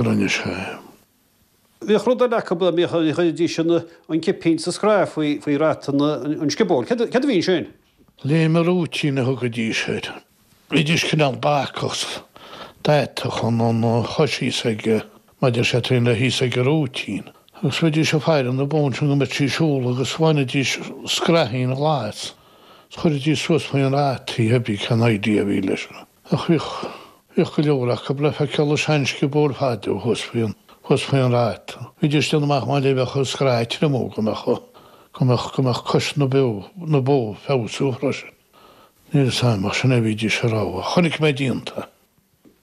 rinne sé. Bhíodh rud eile acu a gcuiridís an cipín sa scraith faoi rata an sciobóil. Céard a bhí ansin? Léim an rúitín a thugaidís air. Bhídís cineál bacach, d'atadh an chois thíos ag, mar deir sé, taobh thíos ag an rúitín. Agus bhídís ag faire na bó ansin go mbeadh sí ag siúl agus bhainidís scraithín ghlas is chuiridís suas faoin rata í, theibí cén idea a bhí leis sin. Ach bhíodh, bhíodh go leor acu le feiceáil i seansciobóil fada ó thuas faoin, thuas faoin rata. Bhídís ag déanamh amach mar a bheadh an scraith ag triomú go mbeadh, go mbeadh, go mbeadh cois na bó, na bó ag feabhsú freisin. Níl 'fhios a'm ach sin a bhídís a' rá. Chonaic mé díonta.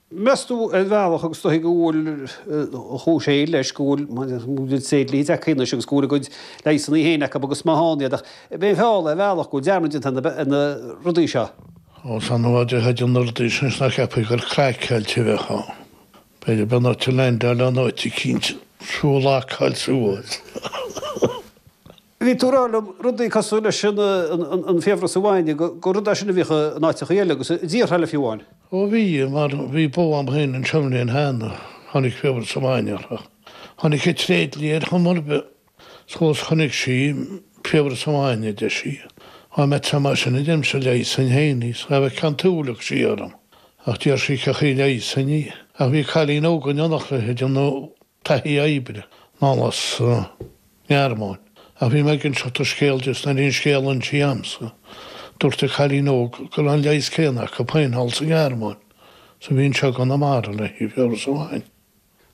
Meas tú ar bhealach agus is dóichí go bhfuil, an chúis eile leis go bhfuil, mar go bhfuil an tréidlia tagtha anois agus go bhfuil a gcuid leigheasannaí féin acu agus má thánn iad ach, b'é an feall é ar bhealach go bhfuil dearmad déanta ar na, ar na rudaí seo. Ós annamh a d'fhéadfainn na rudaí seo anois nach gceapfaí gur craiceáilte a bheifeá. B'fhéidir go mbeadh tú leaindeáilte in áit eicínt is tú locáilte suas. Bhí tú ag rá liom rudaí cosúil leis an an fiabhras an bhainne, gur rud é sin a bhíodh in áiteachaí eile agus i dtíortha eile fiú amháin. Ó bhí, mar bhí bó a'm fhéin anseo an bhliain cheana, tháinig fiabhras an bhainne uirthi. Tháinig an tréidlia ar chuma ar bith. 'S chomh luath 's chonaic sí í, fiabhras an bhainne, a deir sí. Á má tá mar sin, a deir mise leigheasfainn fhéin í, 's ghabh a ceann tuailleach sí orm. Ach d'iarr sí cén chaoi a leigheasfainn í. Ach bhí cailín óg in éineacht léi ag déanamh taithí oibre, anall as an nGearmáin. Ach bhí mé ag inseacht an scéil di is nuair a bhí an scéal insithe a'msa, dúirt an cailín óg go raibh an leigheas céanna acu féin thall sa Ghearmáin 's a bhí anseo i gConamara le haghaidh fiabhras an bhainne.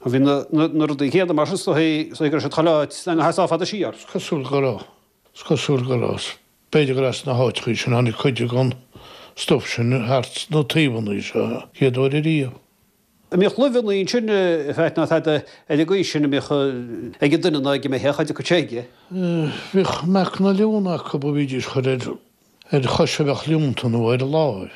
An bhfuil na, na, na rudaí céadna mar sin sna thaobh, sna thaobh go raibh siad chomh leáit le nga sheasamh fada siar? 'S cosúil go raibh, 's cosúil go raibh, 's b'fhéidir go raibh sna háiteachaí sin tháinig cuid de an stuff sin thart sna taobhannaí seo chéad uair ariamh. An mbíodh luibheanna ansin, in fact, ná tada ar an gcaoi sin a bhíodh ag an duine ná ag an mbeithíoch a chuid sé aige? Bheadh meacan an leonta acu, ba bhídís á chur ar, ar chois a bheadh liúnta nó ar láimh.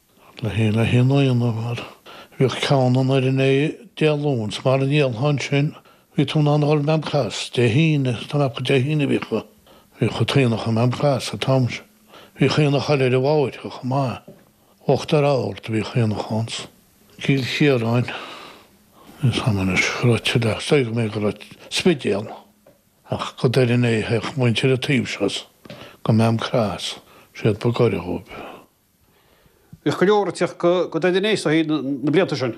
Le haghaidh an, le haghaidh an aonaigh, mar bhíodh ceann i nDoire Né Dé Luain, 's mara ndíolfá ansin, bhí tú in ann a dhul go Maam Cross Dé hAoine, tá mé ag ceapadh Dé hAoine bhíodh, bhíodh an t-aonach i Maam Cross an t-am sin. Bhíodh aonach eile ar an bhFairche chomh maith, Uachtar Ard a bhíodh aonach ann 's Cill Chiaráin, tá 'fhios a'm anois go raibh tuilleadh ach 's dóigh mé go raibh Spidéal, ach go Doire Né a théadh muintir an taobh seo 's go Maam Cross, siad ba gaire dhóibh. Bhíodh go leor ag teacht go Doire Né ó thaobh na blianta sin.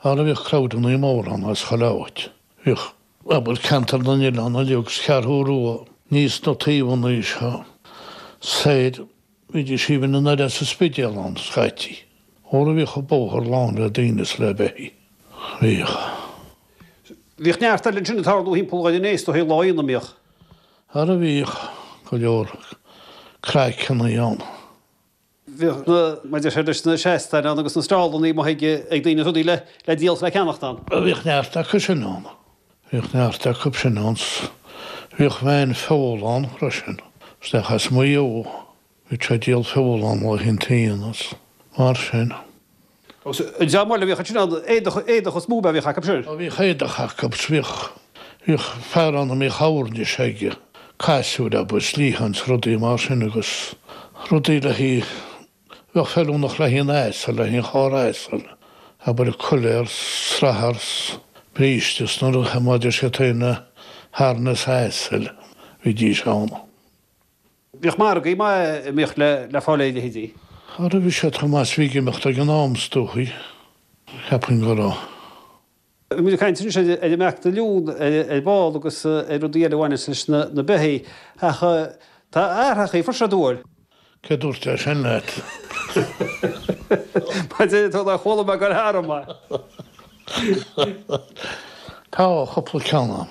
Ara bhíodh crowdannaí móra ann as chuile áit, bhíodh pobal Cheantar na nOileán uilig agus Cheathrú Rua aníos is na taobhannaí seo soir, bhídís even anoir as an Spidéal ann scaití. Ara bhíodh an bóthar lán le daoine is le beithígh. Bhíodh. Bhíodh neart eile ansin ag tarlú thimpeall Dhoire Né ó thaobh lá aonaigh an mbíodh. Ara bhíodh go leor craiceannaí ann. Bhíodh na maidir leis na seastáin ann agus na stallannaí amuigh ag ag daoine rudaí le le díol 's le ceannacht ann. Bhíodh neart acu sin ann. Bhíodh neart acub sin ann 's bhíodh veain feola ann freisin, 's fear as Maigh Eo. Bhí sé ag díol feola ann lá an aonaigh, is mar sin. Agus is amhail a bhíodh ansin ann, éadach, éadach is lúb a bhíodh acu. Sea. Sea, bhíodh éadach acu, agus bhíodh, bhíodh fear ann a mbíodh oirnis aige, casúir agus sleáin 's rudaí mar sin agus rudaí le hí, bheadh feiliúnach le haon asal, le haon charr asail, abair coiléar 's srathar 's bríste 's na rudaí, mar a deir siad féin harness asail, bhídís ann. Bhíodh margaí maith a mbíodh le fáil ar bheithígh. An raibh seo Tomás Mhig Imeachta ag an am, is dóigh? Cheapfainn go raibh. Bhí muid ag caint anois ar an mbeach duilliún ar ball agus ar rudaí eile a bhaineas leis na beithigh ach tá a athrach í, fuair sé dua air. Cé a dúirt é sin leat? Maidir le tú, nár chuala mé gur thar ama. Tá cupla ceann agam.